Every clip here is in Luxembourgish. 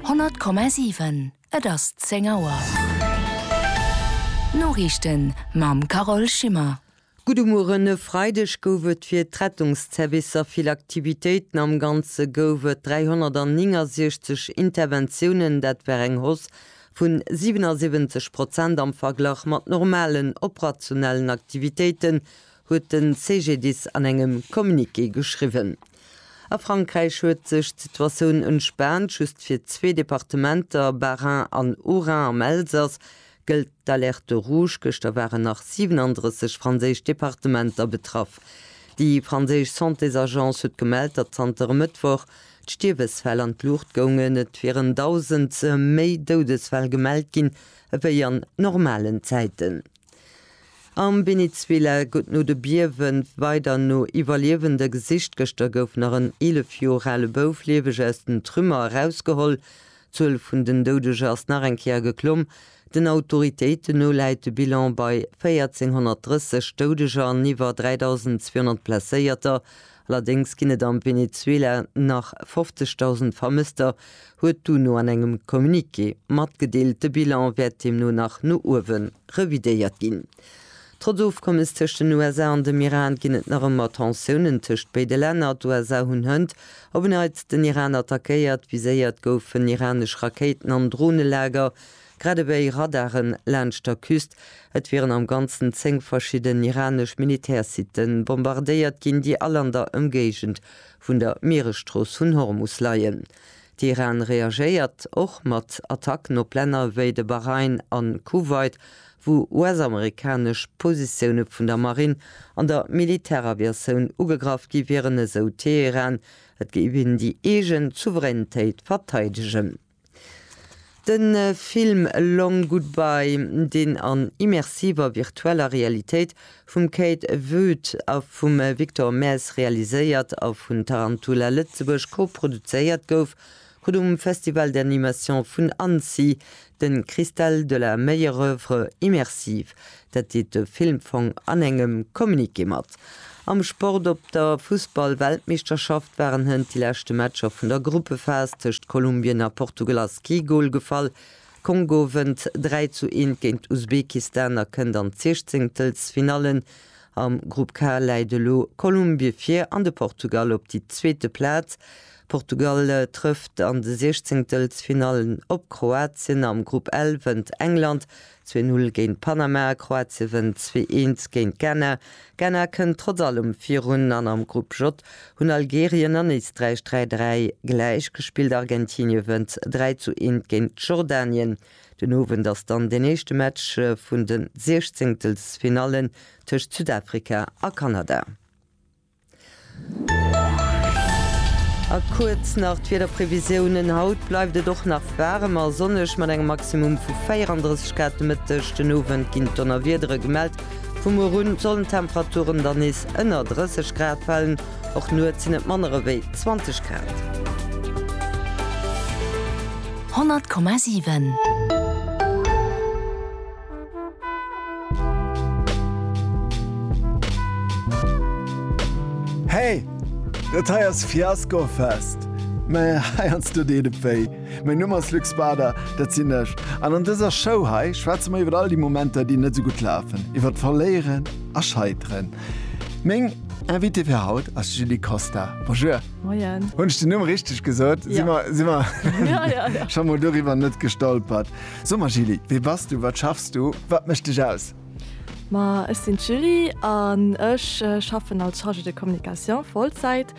100,7 Et ass 10 Auer. D'Noriichten mam Carole Schimmer. Gudde Mueren. E Freideg gouf et fir d'Rettungszervicer vill Aktivitéiten. Am Ganze gouf et 369 Interventiounen, dat war eng Hausse vun 77 Prozent am Verglach mat normalen operationellen Aktivitéiten, huet den CGDIS an engem Communiqué geschriwwen. A Frankräich huet sech d'Situatioun entspaant, just fir zwee Departementer, Bas-Rhin an Haut-Rhin am Elsass, gëllt d'Alerte rouge. Gëschter waren nach 37 franséisch Departementer betraff. Déi franséisch Santésagence huet gemellt, datt zanter e Mëttwoch d'Stierwesfäll an d'Luucht goungen. Et wieren 1.000 méi Doudesfäll gemellt ginn ewéi an normalen Zäiten. Am Venezuela gëtt no de Biewe weider no Iwwerliewende gesicht. Gëschter gouf nach en 11 Joer ale Bouf lieweg aus den Trümmer erausgeholl. D'Zuel vun den Doudeger ass nach eng Kéier geklomm. Den Autoritéiten no läit de Bilan bei 1.430 Doudeger an iwwer 3.200 Blesséierter, Allerdéngs ginn et am Venezuela nach 50.000 Vermësster, huet d'UNO an engem Communiqué matgedeelt. De Bilan wäert deemno nach no uewe revidéiert ginn. Trotz Ofkommes tëscht den USA an dem Iran ginn et nach ëmmer Tensiounen tëscht béide Länner. D'USA hunn hënt op en Neits den Iran attackéiert. Viséiert goufen iranesch Rakéiten an Dronelager. Grad ewéi Radaren laanscht der Küst. Et wieren am Ganzen 10 verschidden iranesch Militärsitte bombardéiert ginn, déi all an der Ëmgéigend vun der Mieresstrooss vun Hormus leien. De Iran reagéiert och mat Attacken op Länner ewéi de Bahrain a Kuwait, wou US-amerikanesch Positioune vun der Marinn an der Militäraviatioun ugegraff gi wieren, esou Teheran. Et géif een déi eegen Souveränitéit verteidegen. De Film Long Goodbye, deen an immersiver virtueller Realitéit vum Kate Wood a vum Victor Maes realiséiert a vun Tarantula Lëtzebuerg koproduzéiert gouf, krut um Festival d'animation vun Annecy de Cristal de la meilleure œuvre immersive. Dat deet de Filmfong an engem Communiqué mat. Am Sport Op der Fussball-Weltmeeschterschaft waren hënt déi leschte Matcher vun der Gruppephas. Tëscht Kolumbien a Portugal ass kee Gol gefall. Kongo wënnt 3 zu 1 géint Usbekistan a kënnt an d'Sichzéngtelsfinalle. Am Grupp K läit elo Kolumbie vir an de Portugal op déi zweete Plaz. Portugal trëfft an de Sichzéngtelsfinallen op Kroatien. Am Grupp L wënnt England Zwee Null géint Panama, Kroatie wënnt zwee eens géint Ghana, Ghana kënnt trotz allem virun an am Grupp J hunn Algerien an Éisträich dräi dräi gläich gespillt. Argentinie wënnt dräi zu eent géint Jordanien. Den Owend ass dann deen éischte Match vun de Siechzéngtelsfinallen tëscht Südafrika a Kanada. A kuerz nach d'Wiederprevisiounen, Haut bleift et och nach waarem a sonneg mat engem Maximum vu 34 Grad. De Mëtteg, den Owend ginn d'Donnerwiedere gemellt. Vu muer un sollen d'Temperaturen dann nees ënner 30 Grad falen, och nuets sinn et manner ewéi 20 Grad. 100,7. Hey! Dat hei ass Fiasco Fest! Mä hei hans du dee de Péi. Mäin Numm ass Luc Spader, dat sinn ech. An an dëser Show hei schwätze mer iwwer all déi Momenter, déi net sou gutt lafen, iwwer Verléieren a Scheiteren. Meng Invitée fir haut ass d'Julie Costa. Bonjour! Moien! Hunn ech den Numm richteg gesot? Si mer scho mol doriwwer net gestolpert? So ma Julie, wee bass du, wat schaffs du, wat mécht dech aus? Ma ech sinn d'Julie an ech schaffen als Chargée de communication Vollzäit,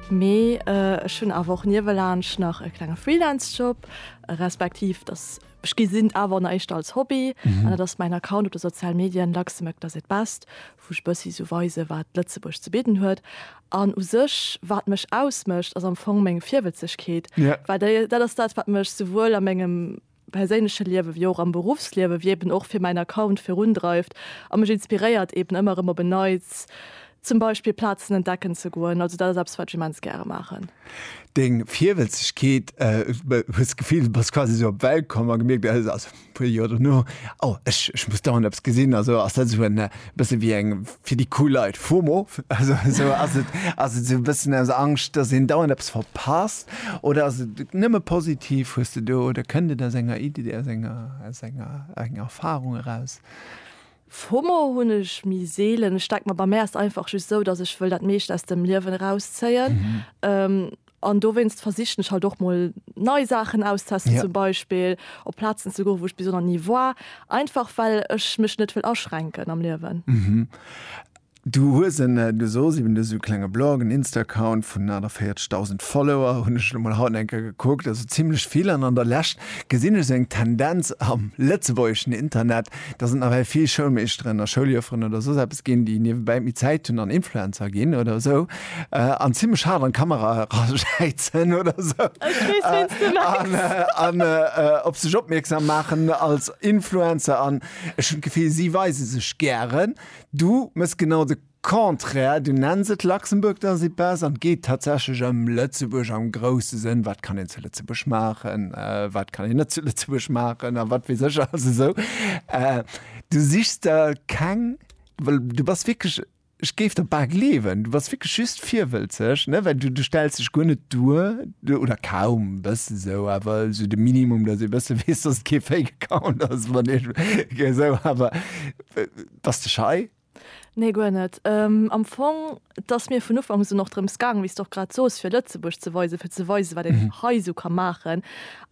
mee ech hunn awer och niewelaanscht nach e klenge Freelance-Job, respektiv dass ech gesinn awer an der éischter als Hobby an dat ass mäin Account op de sozial Medien Luxembourg does it best, wou ech e bëssi sou weise wat Lëtzebuerg ze bidden huet. An u sech wat mech ausmécht ass am Fong meng Virwëtzegkeet, well déi dat ass dat wat mech souwuel a mengem perséinleche Liewe wéi och am Beruffsliewe wéi eben och fir mäin Account virundreift a mech inspiréiert eben ëmmer erëm op en Neits zum Beispill Plazen entdecken ze goen. Also dat ass eppes wat ech immens gäre maachen. Deng Virwëtzegkeet, hues d'Gefill du bass quasi sou op d'Welt komm a gemierkt, also Puer Joer dono, oh, ech, ech muss dauernd eppes gesinn, also ass dat esou en e bësse wéi eng, fir déi cool Leit, FOMO, also esou, ass et, ass et esou e bëssen aus Angscht, datt een dauernd eppes verpasst oder ass et nëmme positiv? Hues de do, oder kënnt et aus enger Id, aus enger, aus enger, enger Erfarung eraus? FOMO hunn ech méi seelen. Ech denke mer, bei mär ass et einfach just esou, datt ech wëll dat meescht aus dem Liewen erauszéien. An dowéinst versichen ech halt och mol nei Saachen auszestesten, zum Beispill op Plazen ze goen, wou ech bis elo nach ni war, einfach well ech mech net wëll aschränken am Liewen. Du hues en, du soss eben esou e klenge Blog, en Insta-Account vun 48.000 Follower, hunn ech elo mol haut eng Kéier gekuckt, also zimlech vill. An an der Lescht gesinn ech esou eng Tendenz am lëtzebuergeschen Internet, Dass et nawell vill Schoulmeeschteren a Schouljufferen oder soss eppes ginn, déi niewebäi méi Zäit hunn an Influencer ginn oder esou an zimmlech haart an d'Kamera eraschäitzen oder esou an op sech opmierksam maachen als Influencer an ech hunn d'Gefill si weise sech gären, du mëss genau de Contraire, du nenns et Luxembourg dans ses pas an et geet tatsächlech ëm Lëtzebuerg am grousse Sënn, wat kann een zu Lëtzebuerg maachen, wat kann een net zu Lëtzebuerg maachen a wat weess ech alles esou. Du sichs der keng, well du bass wierklech, ech géif der bal gleewen, du bass wierklech just virwëlzeg, ne, well du stells dech guer net duer, oder kaum, e bësse sou, awer esou de Minimum, datt ee e bësse weess, datt et kee Fake Account ass, wann ee esou, awer bass de schei? Nee, guer net. Am Fong, et ass mir vun Ufank un och drëms gaangen, wéi s de och grad sos, fir Lëtzebuerg ze weisen, fir ze weisen, wat een hei esou ka maachen.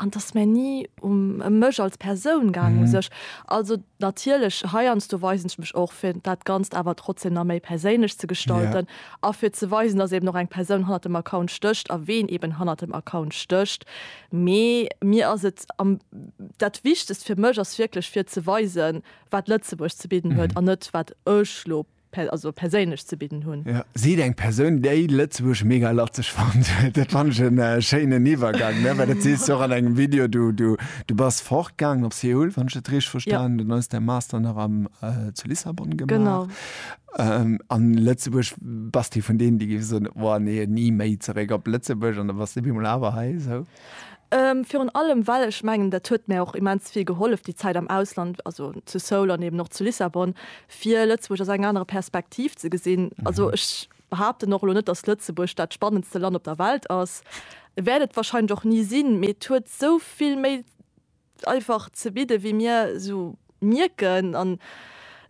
An et ass mir ni um ëm mech als Persoun gaangen u sech. Also natierlech, heiansdo weisen ech mech och, fir dat Ganzt awer trotzdem nach méi perséinlech ze gestalten a fir ze weisen, dass eeben och eng Persoun hannert dem Account stécht a ween eeben hannert dem Account stécht. Mee mir ass et am, dat Wichtegst fir mech ass wierklech, fir ze weisen, wat Lëtzebuerg ze bidden huet an net wat ech lo also perséinlech ze bidden hunn. Ja, sidd eng Persoun, déi Lëtzebuerg mega latzeg fannt. Dat fannt ech en äh, schéinen Iwwergang, ne? well dat sees du och an engem Video. Du, du, du bass fortgaangen op Seoul, wann ech dat richteg verstanen, ja. dann ass däi Master nach am, äh, zu Lissabon gemaach. Genau. Ähm, an Lëtzebuerg bass du vun deenen, déi gi soen, oh nee, ni méi zeréck op Lëtzebuerg, an da bass du bemol awer hei. So. Virun allem, well ech mengen, dat huet mär och immens vill gehollef, déi Zäit am Ausland, also zu Seoul an eben och zu Lissabon, fir Lëtzebuerg aus eng anerer Perspektiv ze gesinn. Also ech behaapten och elo net, datt Lëtzebuerg dat spannendste Land op der Welt ass, wäert et wahrscheinlech och ni sinn, mee et huet esou vill méi einfach ze bidden, wéi mir esou mierken. An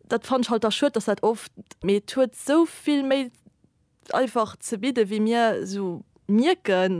dat fannen ech halt da schued, datt dat oft, mee et huet esou vill méi einfach ze bidden, wéi mir esou mierken.